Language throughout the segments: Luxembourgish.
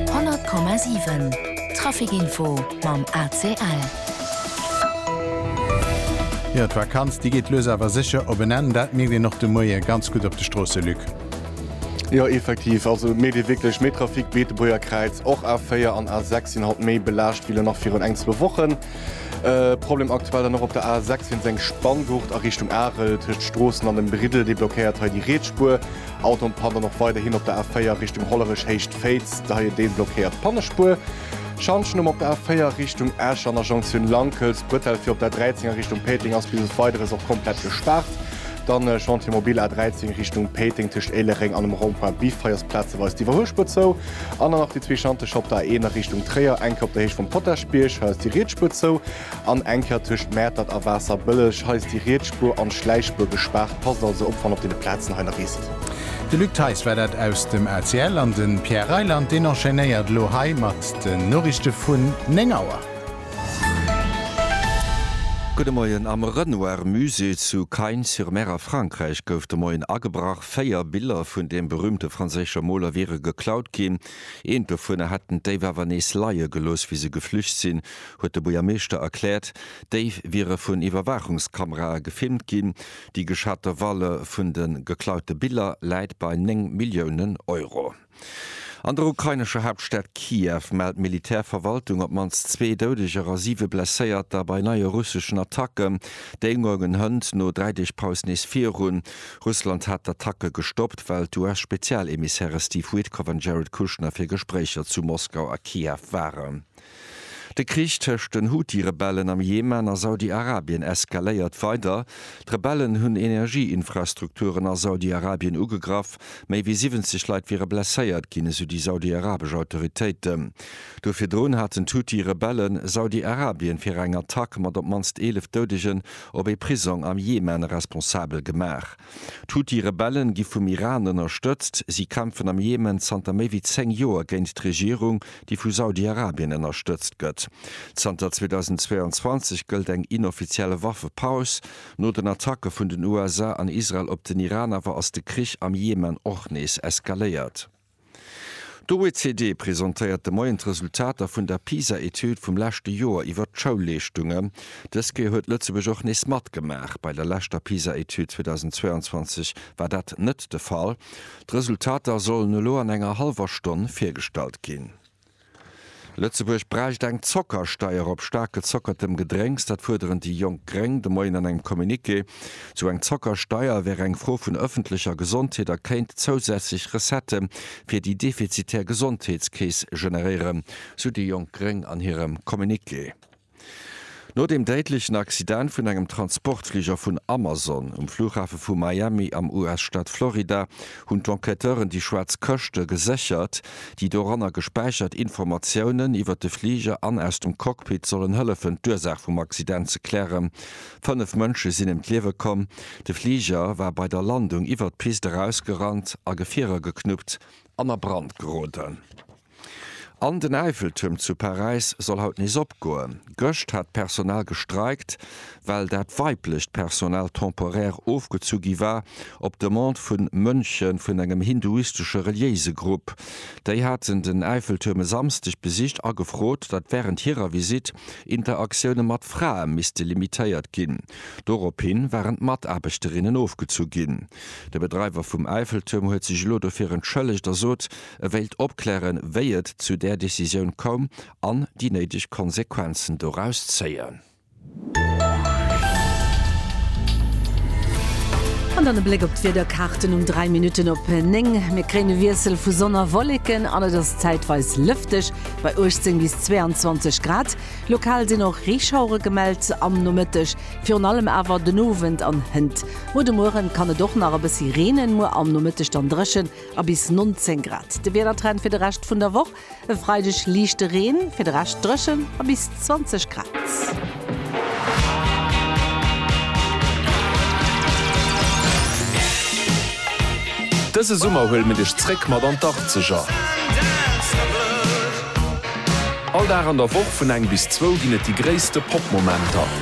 100,7 Trafic Info mam ACL. Jo, d'Vakanz déi geet lues awer sécher op en Enn. Dat mierkt een och de Moie ganz gutt op de Stroosse, Luc. Jo, effektiv. Also et mécht ee wierklech méi Trafic. D'Beetebuerger Kräiz, och A4 an A6 sinn haut méi belaascht wéi elo nach virun eng, zwou Wochen. Problem aktuell dann och op der A6 wéinst eng Spanngurt a Richtung Arel tëscht Stroossen an dem Briddel. Déi blockéiert hei déi Riets Spuer. Autoen pannen och weiderhin op der A4 Richtung Hollerech Héicht Féiz, da hei en Deel blockéiert d'Pannespuer. Schanschen um op der A4 Richtung Esch an der Jonktioun Lankels, Bretelle fir op der A13 a Richtung Péiteng ass bis op Weideres och komplett gespaart. Dann Chantier Mobile A13 Richtung Péiteng tëscht Éilereng an dem Rond-point Biffrei ass plazeweis d'Iwwerhuelspuer zou. An dann nach déi zwee Schantje op der A1 a Richtung Tréier, eng Kéier op der Héicht vum Potaschbierg, hei ass déi riets Spuer zou. An eng Kéier tëscht Mäertert a Waasserbëlleg. Hei ass déi riets Spuer an d'Schläichspuer gespaart. Passt also op, wann op deene Plazen hei nach risst. De Luc Theis war dat aus dem ACL an de Pierre Reyland deen enchaînéiert elo hei mat den Noriichte vun 9 Auer. Gudde Moien. Am Renoir Musée zu Cagnes-sur-Mer a Frankräich gouf de Moien agebrach. Véier Biller vun deem berüümte franséische Moler wiere geklaut ginn. Eent dovunner hätten d'Déif awer nees leie gelooss, wéi se geflücht sinn. huet de Buergermeeschter erkläert. D'Déif wiere vun Iwwerwaachungskamerae gefilmt ginn. Déi geschatte Valeur vun de geklaute Biller läit bei 9 Milliounen Euro. An der ukrainescher Haaptstad Kiew mellt d'Militärverwaltung op d'mannst zwee Doudeger a siwe Blesséierter bei neie russeschen Attacken. D'Éilmueren hënt no dräi Deeg Paus nees virun. Russland hat d'Attacke gestoppt, well d'US-Spezialemissäre Steve Witkoff an Jared Kushner fir Gespréicher zu Moskau a Kiew waren. De Krich tëscht den Houthi-Rebellen am Jemen a Saudi-Arabien eskaléiert weider. D'Rebellen hunn Energieinfrastrukturen a Saudi-Arabien ugegraff. Méi wéi 70 Leit wiere blesséiert ginn, esou déi saudi-arabesch Autoritéiten. Duer virdrun haten d'Houthi-Rebelle Saudi-Arabien fir eng Attack mat op d'mannst 11 Doudegen op ee Prisong am Jemen responsabel gemaach. D'Huthi-Rebellen gi vum Iran ënnerstëtzt. Si kämpfen am Jemen zanter méi wéi 10 Joer géint d'Regierung, déi vu Saudi-Arabien ënnerstëtzt gëtt. Zanter 2022 gëllt eng inoffizielle Waffepaus. No den Attacke vun den USA an Israel op den Iran awer ass de Krich am Jemen och nees eskaléiert. D'OECD presentéiert de Moien d'Resultater vun der PISA-Etüd vum leschte Joer iwwert d'Schoulleeschtunge. Dës Kéier huet Lëtzebuerg och nees matgemaach. Bei der leschter PISA-Etüd 2022 war dat net de Fall. D'Resultater sollen elo an enger hallwer Stonn virgestallt ginn. Lëtzebuerg bräicht eng Zockersteier op staark gezockertem Gedrénks, dat fuerderen déi jonk Gréng de Moien an engem Communiqué. Sou eng Zockersteier wär eng Fro vun ëffentlecher Gesondheet a kéint zousätzlech Recettë fir déi defizitär Gesondheetskeess generéieren, sou déi jonk Gréng an hirem Communiqué. No dem déidlechen Accident vun engem Transportfliger vun Amazon um Flughafe vu Miami am US-Staat Florida hunn d'Enquêteuren déi schwaarz Këschte geséchert, déi doranner gespäichert Informatiounen iwwer de Fliger an aus dem Cockpit sollen hëllefen d'Ursaach vum Accident ze klären. Fënnef Mënsche sinn ëm d'Liewe komm. De Fliger war bei der Landung iwwer d'Pist erausgerannt a Gefierer geknuppt an a Brand geroden. An den Äifeltürm zu Paräis soll haut nees opgoen. Gëscht hat d'Personal gestreikt, well dat weiblecht Personal temporaire ofgezu gi war, op Demande vu Mönche vun engem hinduistesche reliéise Grupp. Déi haten den Äifeltürm e Samsdeg besicht a gefrot, datt wärend hirer Visitt Interaktioune mat Frae misste limitéiert ginn. Doropshi waren d'Mataarbechterinnen ofgezu ginn. De Bedreiwer vum Äifeltürm huet sech elo dofir entschëllegt a sot, E wéilt opklären, wéi et zu där Decisioun koum an déi néideg Konsequenzen doraus zéien. An dann e Bléck op d'Wiederkaarten um 3 Minutten op 9. Mir kréien e Wiessel vu Sonn a Wolleken an et ass zäitweis lëfteg bei 18 bis 22 Grad. Lokal sinn och Reeschauere gemellt am Nomëtteg, virun allem awer den Owend an hënt. No de Muere kann et och nach e bëssi reenen, muer am Nomëtteg dann dréchen a bis 19 Grad. De Wiedertrend fir de Rescht vun der Woch, E Freideg liichte Reen, fir de Rescht dréchen a bis 20 Grad. Dëse Summer huele mir dech zréck mat an d'Arkzeger. All Dag an der Woch vun eng bis zwou ginn et déi gréisste Pop-Momenter.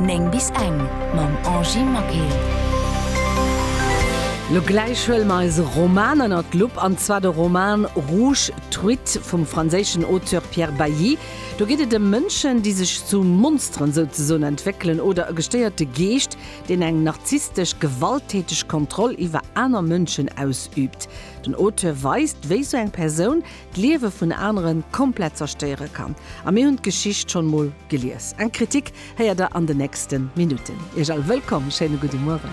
9 bis eng mam Angie Maquil. Lo gläich huele mer eise Roman ënnert d'Lupp, an zwar de Roman Rouge Truite vum franséischen Auteur Pierre Bailly. Do geet et ëm Mënschen, déi sech zu Monsteren souzesoen entwéckelen, oder e gestéierte Geescht, deen eng narzisstesch, gewalttäteg Kontroll iwwer aner Mënschen ausüübt. Den Auteur weist, wéi sou eng Persoun d'Liewe vun anere komplett zerstéiere kann. A mir hunn d'Geschicht schonn emol gelies. Eng Kritik héiert der an den nächste Minutten. Iech all wëllkomm, schéine gudde Mueren.